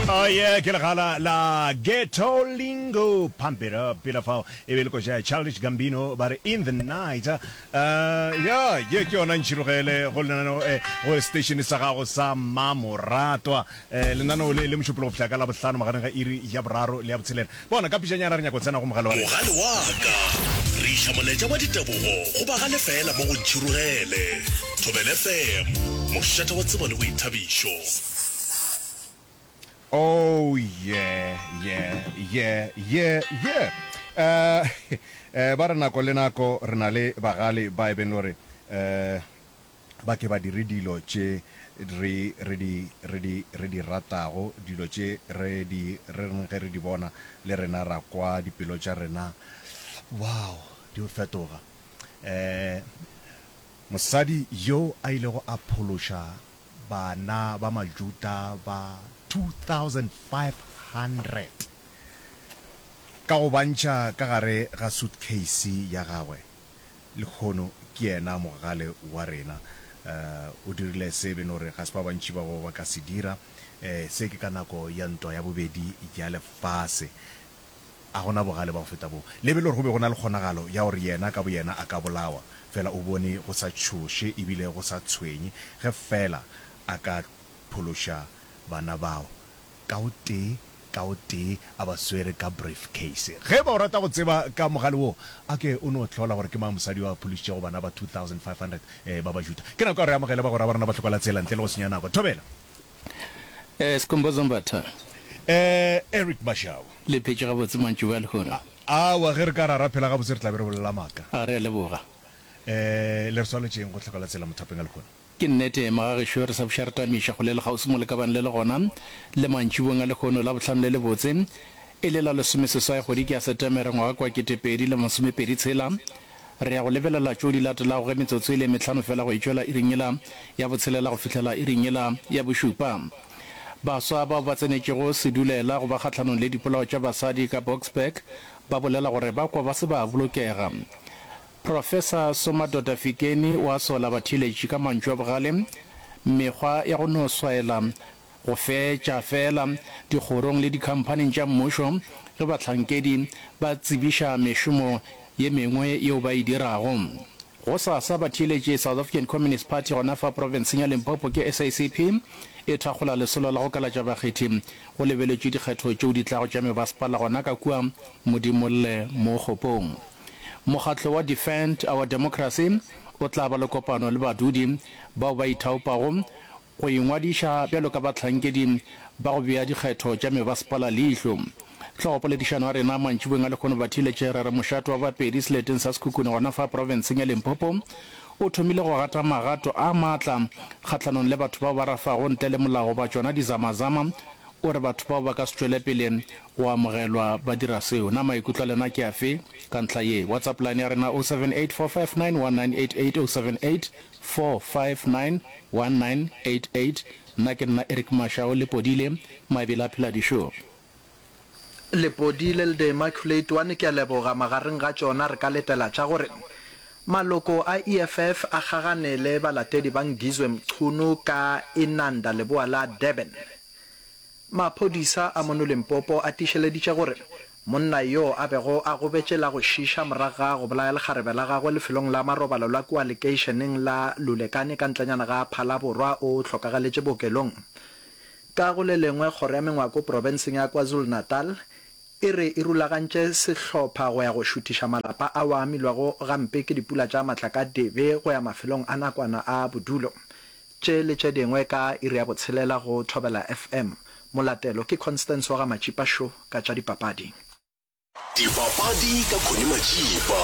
Oh yeah, ke legala la Ghetto Lingo Pump it up Pila fao e be le koja ya Childish Gambino ba re In the night uh, Ya, ye ke yona ntšhirogele go lenaneo eh, go station sa gago sa Mmamoratwa eh, Lenaneo le le mošupologo go fihla ka Labohlano magareng ga iri ya boraro le ya botshelela Bona, ka pišanyana re nyaka go tsena go mogale wa rena. Mogale wa ka. Re iša molaetša wa ditebogo go ba ga lefeela mo go Ntšhirogele. Thobela FM, mošate wa tsebo le boithabišo. Oh yeah, yeah, yeah, yeah, yeah. Uh, uh, ba re nako le nako re na le bagale ba e beng le gore, uh, ba ke ba dire dilo tše re, re di, re di, re di ratago, dilo tše re di rerng ge re di bona, le rena ra kwa dipelo tša rena, wow, di o fetoga. Ee, mosadi yo a ilego a phološa bana ba Majuda ba 2,500 ka go bantšha ka gare ga suitcase ya gagwe, Lehono ke yena mogale wa rena. O dirile se e beno re ga se ba bantši ba bo ba ka se dira. Se ke ka nako ya Ntwa ya Bobedi ya Lefase. A go na bogale ba go feta boo. Lebe le gore go be go na le kgonagalo ya gore yena ka boyena a ka bolawa, fela o bone go sa tšhoše e bile go sa tshwenye ge feela a ka phološa bana bao. ka o tee ka o tee a ba swere ka briefcase. Ge e ba o rata go tseba ka mogale woo, a ke o no hlola gore ke mang mosadi yo a phološitšego bana ba 2,500 ba Bajuda. Ke nako ya gore re amogele bagwera ba rena ba Tlhokola-tsela ntle le go senya nako. Thobela. Eh, Skhumbuzo Mbatha. Eh, Eric Mashau. Le phetše gabotse mantšu ba lehono? Aowa, ge re ka ra ra phela gabotse re tla be re bolela maaka. A re a leboga. Eh, le re swaletšeng go Tlhokola-tsela mothapeng a lehono? Ke nnete, magagešo re sa buša re tamiša kgole le kgauswi mo le ka bang le le gona, le mantšibong a lehono la bohlano le lebotse, e le la lesomeseswai kgwediki ya Setemere ngwaga kwa ketepedi le masomepedi tshela. Re ya go lebelela tšo di latelago ge metsotso e le e mehlano fela go e tšwela iring yela ya botshelela go fihlela iring yela ya bošupa. Baswa bao ba tsenetšego sedulela go ba kgahlanong le dipolao tša basadi ka Boksburg ba bolela gore ba kwa ba se ba bolokega. Professor Somadoda Fikeni o a sola batheeletši ka mantšu a bogale, mekgwa ya go no swaela go fetša feela dikgorong le dikhamphaning tša mmušo ge bahlankedi ba tsebiša mešomo ye mengwe yeo ba e dirago. Gosasa batheeletši South African Communist Party gona fa profenseng ya Limpopo ke SACP e thakgola lesolo la go kalatša bakgethi go lebeletšwe dikgetho tšeo di tlago tša mebasepala gona ka kua Modimolle mo Kgopong. Mokgatlo wa Defend Our Democracy o tla ba le kopano le badudi bao ba ithaopago go ingwadiša bjalo ka bahlankedi ba go bea dikgetho tša mebasepala leihlo. Hlogopoledišano ya rena mantšiboweng a lekgono ba thiletše re re mošate wa Bapedi seleteng sa Sekhukhune gona fa profenseng ya Limpopo o thomile go gata magato a matla kgahlanong le batho bao ba rafago ntle le molao goba tšona dizamazama. O re batho bao ba ka se tšwelepele Go amogelwa ba dira seo. Na maikutlo a lena ke afe ka ntlha ye? WhatsApp line ya rena 0784591988 0784591988. Nna ke nna Eric Mashau, Lepodile mabele a phela dišo. Lepodile le the Immaculate one ke a leboga, magareng ga tšona re ka letela tša gore maloko a EFF a kgagane le balatedi ba Ngizwe Mchunu ka Inanda leboa la Durban. Maphodisa a mono Limpopo a tiišeleditše gore monna yo a bego a gobetše la go šiiša morago ga go bolaya lekgarebe la gagwe lefelong la marobalo la kua lekeišeneng la Lulekane ka ntlenyana ga Phalaborwa o hlokagaletše bookelong. Ka go le lengwe, kgoro ya mengwako profenseng ya KwaZulu-Natal e re e rulagantše sehlopha go ya go šuthiša malapa ao a amilwego gampe ke dipula tša matlakadibe go ya mafelong a nakwana a bodulo. Tše le tše dingwe ka iri ya botshelela go Thobela FM. Molatelo ke Constance wa ga Matšipa Šo ka tša dipapadi. Dipapadi ka Connie Matšipa.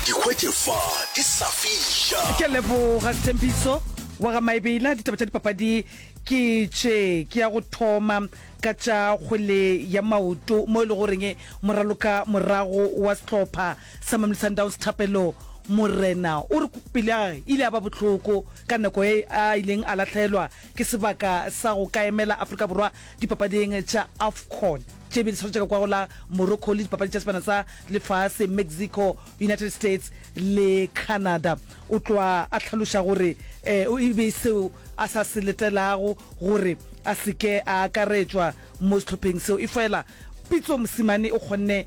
Di hwetše fa di sa fiša. Ke a leboga Sthembiso wa ga Maebela. Ditaba tša dipapadi ke tše. Ke ya go thoma ka tša kgwele ya maoto mo e le goreng moraloka morago wa sehlopha sa Mamelodi Sundowns Thapelo Morena o re pelo ya gagwe e ile ya ba bohloko ka nako ye a ileng a lahlelwa ke sebaka sa go ka emela Afrika Borwa dipapading tša Afcon tše be di swarwetše ka kwago la Morocco le dipapadi tša Sebana sa Lefase, Mexico, United States le Canada. O tloga a hlaloša gore e be e seo a sa se letelago gore a se ke a akaretšwa mo sehlopheng seo efela Pitso Mosimane o kgonne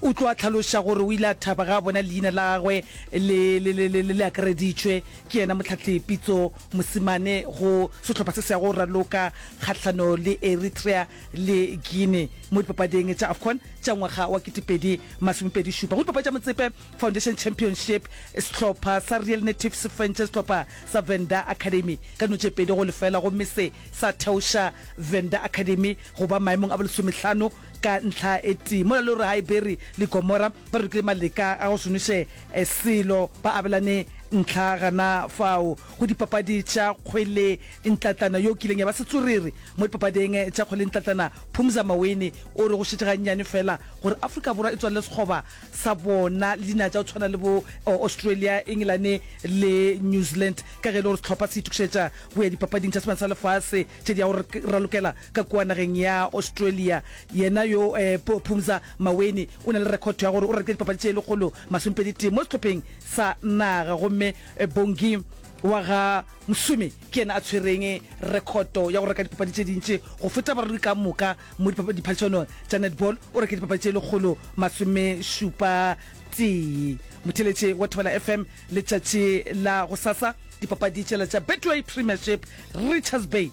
O tlo a hlaloša gore o ile a thaba ge a bona leina la gagwe le, le, le, le, le, le akareditšwe ke yena Mohlahli Pitso Mosimane go sehlopha se se yago go raloka kgahlano le Eritrea le Guinea mo dipapading tša Afcon tša ngwaga wa ketepedi masomepedi šupa. Go dipapadi tša Motsepe Foundation Championship, sehlopha sa Real Native se fentše sehlopha sa Venda Academy ka dino tše pedi go lefela gomme se sa theoša Venda Academy go ba maemong a bo lesomehlano Ka ntlha e tee, mola le gore Haeberi le Gomora ba rokile maleka a go šomiše selo, ba abelane ntlha gana fao go dipapadi tša kgwele ntlatlana yo kileng ya ba setswerere mo dipapading tša kgwele ntlatlana. Phumza Maweni o re go šetše gannyane fela gore Afrika Borwa e tswalele sekgoba sa bona le dinaga tša go tshwana le bo Australia, Engelane le New Zealand ka ge e le gore sehlopha se itokišetša go ya dipapading tša Sebana sa Lefase tše di yago ralokela ka kua nageng ya Australia. Yena yo po, Phumza Maweni o na le rekhotho ya gore o rekile dipapadi tše lekgolo masomepedi tee mo sehlopheng sa naga gomme Bongi wa ga Msumi ke yena a tshwereng rekhoto ya go reka dipapadi tše dintši go feta barui ka moka mo dipa, diphadišanong tša netball. O rekile dipapadi tše lekgolo masomešupa tee. Motheletše wa Thobela FM letšatši la gosasa, dipapadi tšela tša Betway Premiership, Richards Bay.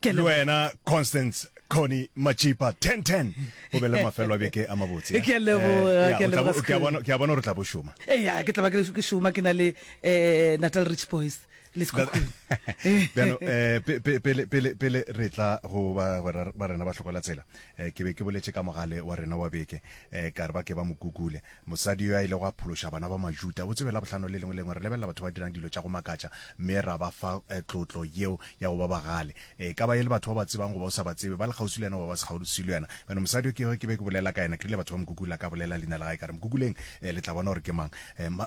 Ke le wena Constance Connie Matšipa 1010 o be le mafelo a beke a mabotse eh? Ke a leboga, Eh, ya, ke a o tla leboga, bo- ke a Skhulu. bona- ke a bona gore o tla bo šoma eya ke tla ba ke ke šoma ke na le um natal rich boys le sekhukhung bjano eh, pe- pe- pele- pele pele re tla go ba ba ra- ba rena ba hlokola tsela eh, ke be ke boletše ka mogale wa rena wa beke eh, ka re ba ke ba mo kukule Mosadi yo a ilego a phološa bana ba Majuda o tsebe Labohlano le lengwe le lengwe re lebelela batho ba dirang dilo tša go makatša mme ra ba fa tlotlo yeo ya go ba bagale. E ka ba e le batho o ba tsebang goba o sa ba tsebe, ba le kgauswi le yena goba ba se kgauswi le yena. Bjale mosadi yo ke kego ke be ke bolela ka yena, ke rile batho ba mo Google ka bolela leina la gae ka re mo Google-eng le tla bona gore ke mang.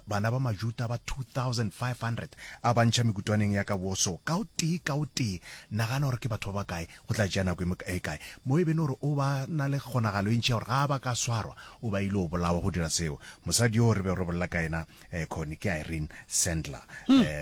Bana ba Majuda ba 2,500 a ba ntšha mekutwaneng ya ka Warsaw ka o tee ka o tee. Nagana gore ke batho ba bakae Go tla tšea nako e kae? Mo e be e le gore o ba na le kgonagalo e ntši ya gore ga a ba ka swarwa, o ba ile o bolawa go dira seo. Mosadi yoo re bego re bolela ka yena, Connie, ke Irene Sandler,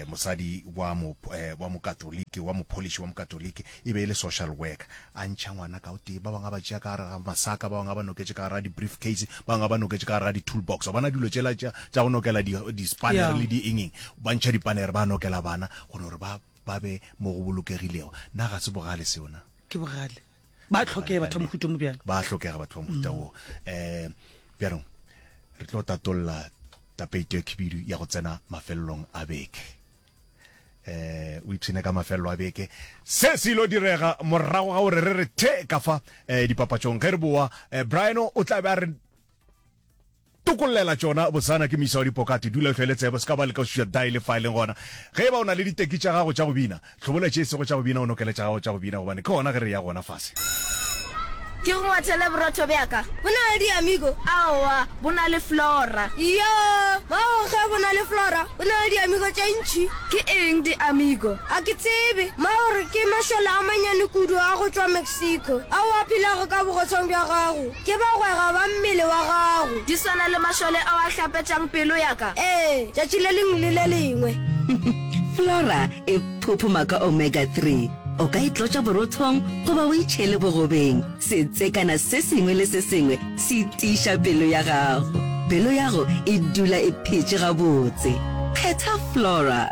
mosadi wa mo, wa Mokatoliki, wa mopholiši wa Mokatoliki. E be e le social worker. A ntšha ngwana ka o tee, ba bangwe a ba tšea ka gare ga masaka, ba bangwe a ba noketše ka gare ga di-briefcase, ba bangwe a ba noketše ka gare ga di-toolbox. Wa bona dilo tšela tša, tša go nokela di, di-spanner le di-engeng. Ba ntšha di-panner, ba nokela bana gore ba, ba be mo go bolokegilego. Na ga se bogale seo? Na. Ke bogale. Ba a hlokega batho ba mohuta mo bjalo. Ba a hlokega batho ba mohuta wo. Um bjanong re tlo tatolla tapeito e khibidu ya go tsena mafelelong a beke eh o ipshine ka mafelelo a beke se se ilo direga morago ga gore re re the ka fa eh, dipapatšong ge re boa eh, briano o tla be a re Tokollela tšona botsana ke moisa wa dipokate, dula o hlwele tsebe, o se ka ba leka go šiša dae le fa e leng gona ge e ba o na le diteki tša gago tša go bina. Hlobola tše e sego tša go bina o nokele tša gago tša go bina gobane ke gona ge re eya gona fase. Ke go ngwathele borotho bja ka. Bo na le diamigo? Aowa, bo na le flora. Iyoo, bao ge bo na le flora bo na le diamigo tše ntši. Ke eng diamigo? A ke tsebe. Maore ke mašole a mannyane kudu a go tšwa Mexico ao a phelago ka bogotshong bja gago. Ke bagwera ba mmele wa gago. Di swana le mašole ao a hlapetšang pelo ya ka. Ee, tšatši le lengwe le le lengwe. Flora e phuphuma ka omega three. O ka e tlotša borothong goba o e tšhele bogobeng. Setsekana se sengwe le se sengwe se tiiša pelo ya gago. Pelo ya go e dula e phetše gabotse. Kgetha Flora.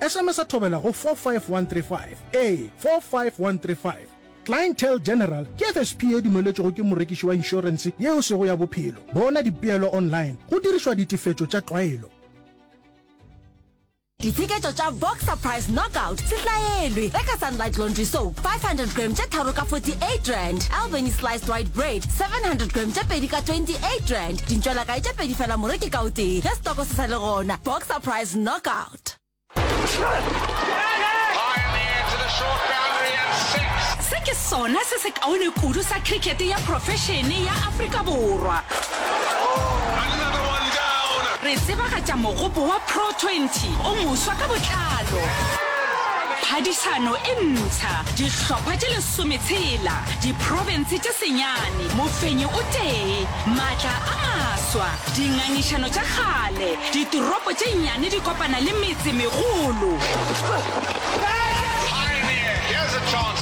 Esemesa thobela go 45135, ee, 45135. Clientele General ke FSP ye dumeletšwego ke morekiši wa inšorense ye e sego ya bophelo. Bona dipeelo online go dirišwa ditefetšo tša tlwaelo. Ditsheketšo tša Boxer Price Knockout setlaelwe, reka Sunlight Laundry Soap 500 g tše tharo ka 48 rand, Albany Sliced White Bread 700 g tše pedi ka 28 rand, dintšwelakae tše pedi fela moreki ka o tee, ge setoko se sa le gona. Boxer Price Knockout. Egypt. Se ke sona se se kaone kudu sa cricket ya profešene ya Afrika Borwa. Re tsebagatša mogopo wa Pro 20 o moswa ka botlalo. Phadišano e ntsha, dihlopha tše lesome tshela, diprofense tše senyane, mofenyi o tee, matla a maswa, dingangišano tša kgale, Ditoropo tše nnyane di kopana le metse megolo.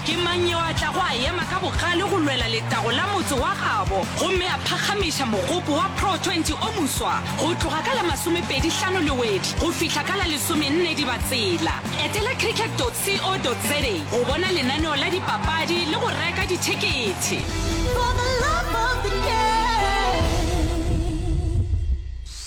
Ke mang yo a tlago a ema ka bogale go lwela letago la motse wa gabo gomme a phagamiša mogopo wa Pro 20 o moswa go tloga ka la masomepedi hlano Lewedi go fihla ka la lesomenne Dibatsela? Etela cricket dot co dot za go bona lenaneo la dipapadi le go reka dithekethe.